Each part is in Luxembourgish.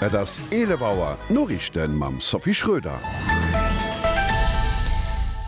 Et ass 11 Auer, d'Noriichten mam Sophie Schröder.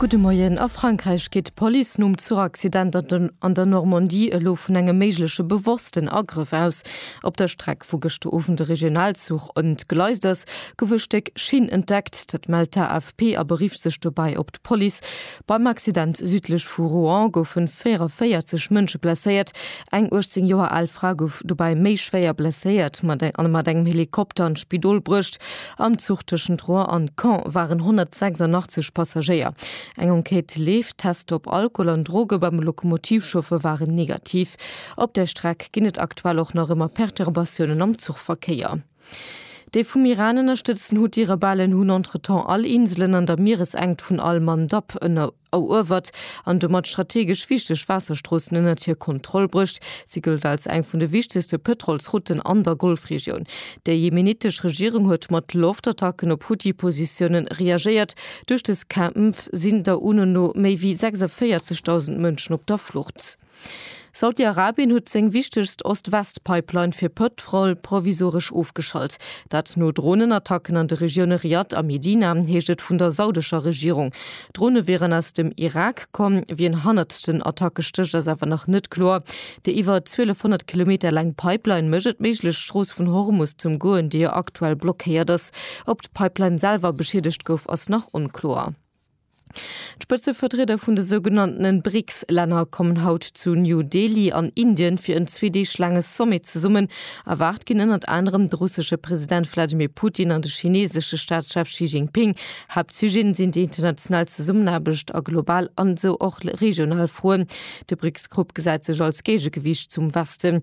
Gudde Moien, A Frankräich geet d'Police nom Zuchaccident an der Normandie elo vun engem méigleche bewossten Agrëff aus. Op der Streck, wou gëschter Owend e Regionalzuch entgleist ass, gouf e Stéck Schinn entdeckt. Dat mellt d'AFP a berifft sech dobäi op d'Police. Beim Accident südlech vu Rouen goufe 44 Mënsche blesséiert. Eng 18 Joer al Fra gouf dobäi méi schwéier blesséiert a mat engem Helikopter an d'Spidol bruecht. Am Zuch tëschent Rouen an Caen waren 186 Passagéier. Eng Enquête leeft. D'Tester op Alkohol an Droge beim Lokomotivchauffeur waren negativ. Op der Streck ginn et aktuell och nach ëmmer Perturbatiounen am Zuchverkéier. Déi vum Iran ënnerstëtzten Huthi-Rebellen hunn entretemps all Inselen an der Mieresenkt vun al-Mandab eruewert an domat strategesch wichteg Waasserstroossen ënnert hir Kontroll bruecht. Si gëllt als eng vun de wichtegste Pëtrolsrouten an der Golfregioun. Déi jemenitesch Regierung huet mat Loftattacken op Huthi-Positioune reagéiert. Duerch dës Kämpf sinn der UNO no méi wéi 46.000 Mënschen op der Flucht. Saudi-Arabien huet seng wichtegst Ost-West-Pipeline fir Pëtrol provisoresch ofgeschalt. Dat no Dronenattacken an de Regioune Riyadh a Medina, heescht et vun der saudescher Regierung. D'Drone wieren aus dem Irak komm. Wien hannert den Attacke stécht, ass awer nach net kloer. Déi iwwer 1.200 Kilometer laang Pipeline mécht et méiglech, d'Strooss vun Hormus zum goen, déi jo aktuell blockéiert ass. Ob d'Pipeline selwer beschiedegt gouf, ass nach onkloer. D'Spëtzevertrieder vun de sougenanntene BRICS-Länner kommen haut zu New Delhi an Indien fir en zwee Deeg laange Sommet zesummen. Erwaart ginn ënnert anerem de russesche President Wladimir Putin an de chineesesche Staatschef Xi Jinping. Haaptsujeten sinn déi international Zesummenaarbecht a global an esou och regional Froen. De BRICS-Grupp gesäit sech als Géigegewiicht zum Westen.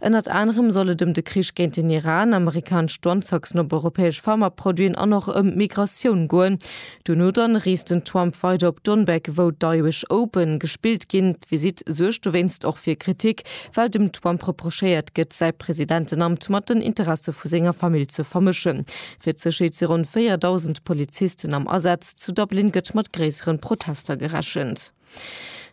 Ënnert anerem soll et ëm de Krich géint den Iran, amerikanesch Douanetaxen op europäesch Pharmaproduiten an och ëm d'Migratioun goen. Duerno dann reest den Trump weider op Donbek, wou d'Irish Open gespillt ginn. D'Visitt suergt dowéinst och fir Kritik, well dem Trump reprochéiert gëtt, säi Presidentenamt mat den Interesse vu senger Famill ze vermëschen. Fir d'Sécherheet si ronn 4.000 Polizisten am Asaz. Zu Dublin gëtt mat gréisseren Protester gerechent.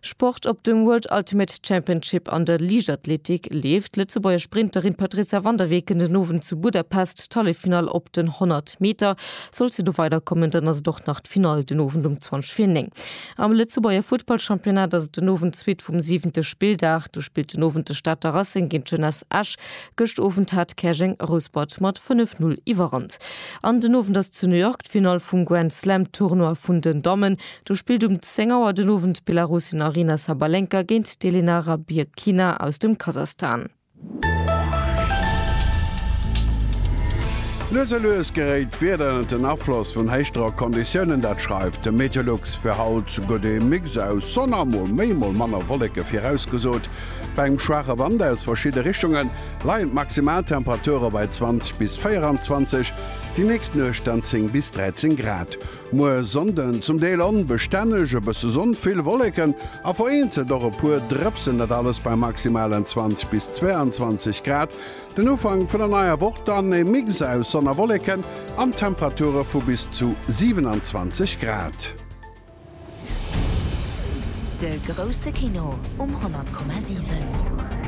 Sport, Op dem World Ultimate Championship an der Liichtathletik leeft d'Lëtzebuerger Sprinterin Patrizia van der Weken den Owend zu Budapest d'Halleffinall op den 100 Meter. Sollt se do weiderkommen, dann ass et och nach d'Finall den Owend um 20 vir 9. Am Lëtzebuerger Futtballchampionnat ass et den Owend d'Suite vum siwente Spilldag. Do spillt den Owend de Stater Racing géint d'Jeunesse Esch. Gëscht Owend hat Käerjeng Rouspert mat 5, 0 iwwerrannt. An den Owend ass zu New York d'Finall vum Grand Slam Tournoi vun den Dammen. Do spillt um 10 Auer den Owend d'Belarusin Aryna Sabalenka géint d'Elena Rybakina aus dem Kasachstan. Lues a lues geréit d'Wieder ënnert den Afloss vun Héichdrockconditiounen, dat schreift de Meteolux. Fir haut gëtt ee Mix aus Sonn a mol méi mol manner Wolleke virausgesot. Bei engem schwaache Wand aus verschidde Richtunge leien d'Maximaltemperature bei 20 bis 24, déi nächst Nuecht dann 10 bis 13 Grad. Muer Sonnden zum Deel onbestänneg, e bësse Sonn, vill Wolleken a vereenzelt och e puer Drëpsen, dat alles bei maximalen 20 bis 22 Grad. Den Ufank vun der neier Woch dann e Mix aus Sonn a Wolleken an Temperature vu bis zu 27 Grad. De grousse Kino um 100,7.